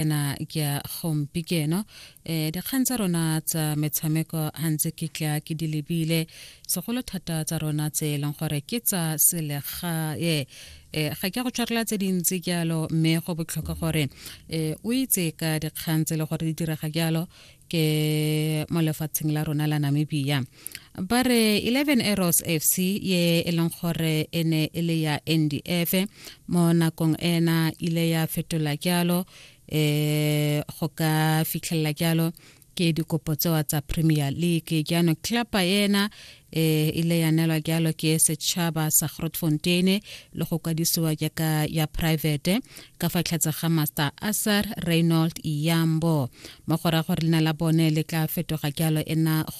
ena ke a gompi keno eh dikgang tsa rona tsa metshameko hantse ke tla ke di lebile segolo thata tsa rona tse e leng gore ke tsa selega eh ga ke go tshwarela tse dintsi jalo mme go botlhokwa gore eh o itse ka dikgang tse le gore di direga jalo ke mo lefatsheng la rona la Namibia ba re 11 arrows fc ye e leng gore e ne e le ya ndf mo nakong ena ile ya fetola jalo um go ka fitlhelela jalo ke dikopo tsewa tsa premier league jaanong cluba ena eh ile ya nelwa jalo ke setšhaba sa grotfonteine le go kwadisiwa jaaka ya private ka fa tlhatse ga master asar reynold iyambo mo go raya gore leina la bone le tla fetoga jalo ena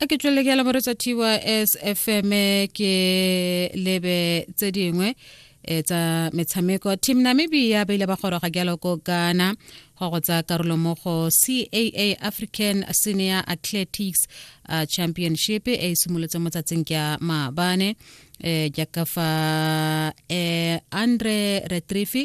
a ke tswelele ke ya lamoretsa tys fm ke lebe tse dingwe e tsa metshameko team namibia ba ile ba goroga jalo ko ghana go go tsaya karolo mo go caa african senior athletics uh, championship e e simolotse mo tsatsing ka maabane eh, jaaka fa eh, andre retrifi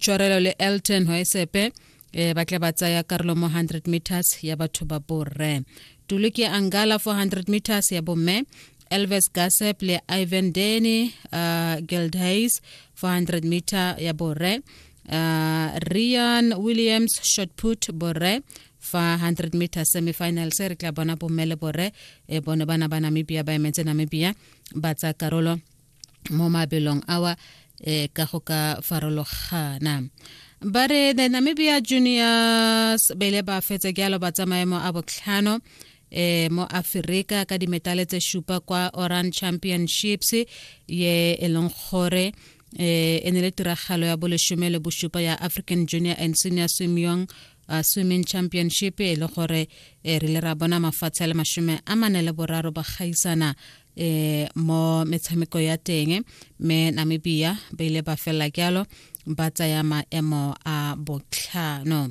tshwarelo le elton hoesepe e ba tle ba tsaya karolo mo 100 meters ya batho ba borre tuluki angala 400 meters ya bomme elvis gasep le ivan deni uh, gildhays 400 meter ya borre uh, rian williams shotput borre fa 100 meter semifinal se re tla bona bomme le borre e bone bana ba namibia ba emetse namibia ba tsa karolo mo mabelong awa e ka go ka farologana ba re the namibia juniors ba ile ba fetse ke alo ba tsamaye mo a botlhano eh mo Afrika ka dimetale tse shupa kwa Oran Championships ye e leng gore eh e ne le tiragalo ya boleshome le boshupa ya African Junior and Senior Swimming uh, swimming championship e le gore eh, re le ra bona mafatshe a le mashome a mane le boraro ba gaisana eh mo metshameko ya teng me namibia ba ile ba felela kyalo ba tsaya maemo a botlhano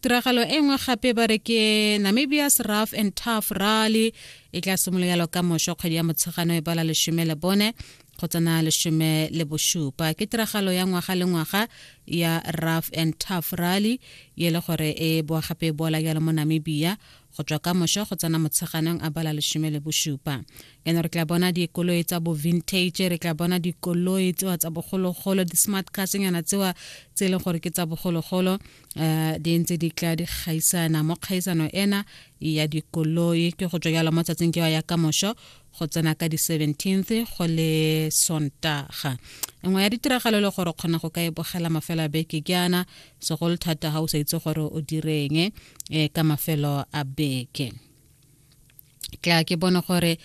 tiragalo e nngwe gape ba re ke namibia's rough and tough rally e tla simoloyalo ka mošwa kgwedi ya motshegano e bala lesome le bone go tsena lesome le bošupa ke tiragalo ya ngwaga le ngwaga ya rough and tough rally ye le gore e boa gape e boala jalo mo namibia go tswa ka mošo go tsena motsheganong a bala lesome le bosupa ene re tla bona dikoloi tsa bo vintage re tla bona dikoloi tsewa tsa bogologolo di-smart carsenyana tsewa tse e leng gore ke tsa bogologolo um di ntse di tla di gaisana mo kgaisano ena ya dikoloi ke go tswa jalo mo tsatsing kewa ya ka mošo go tsena ka di-seventeenth go le sontaga nngwe ya ditiragalo e le gore o kgona go ka e bogela mafelo a beke ke ana segolo thata ga o sa itse gore o direng e ka mafelo a beke tla ke bone gore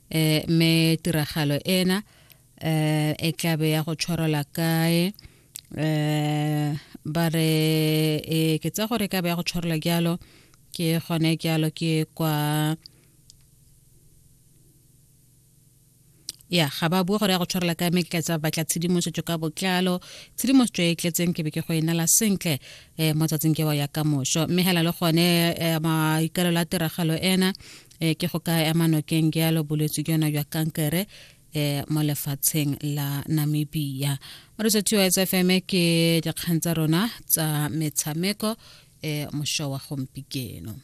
eh me tiragalo ena eh e tlabe ya go tshwarela kae eh ba re e ke tsa gore ka be ya go tshwarela jalo ke gone jalo ke kwa ya ga ba bua gore ya go tshwarela ka me ke tla tsa batla tshedimosetso ka botlalo tshedimosetso e tletseng ke be ke go e nala sentle um mo tsatsing ke wa ya ka moso mme hela le gone um maikalelo a tiragalo ena um ke go ka ema nokeng jalo bolwetse ke yona jwa kankere um mo lefatsheng la namibia mo retsa tio s f m ke dikgang tsa rona tsa metshameko um mošo wa gompikeno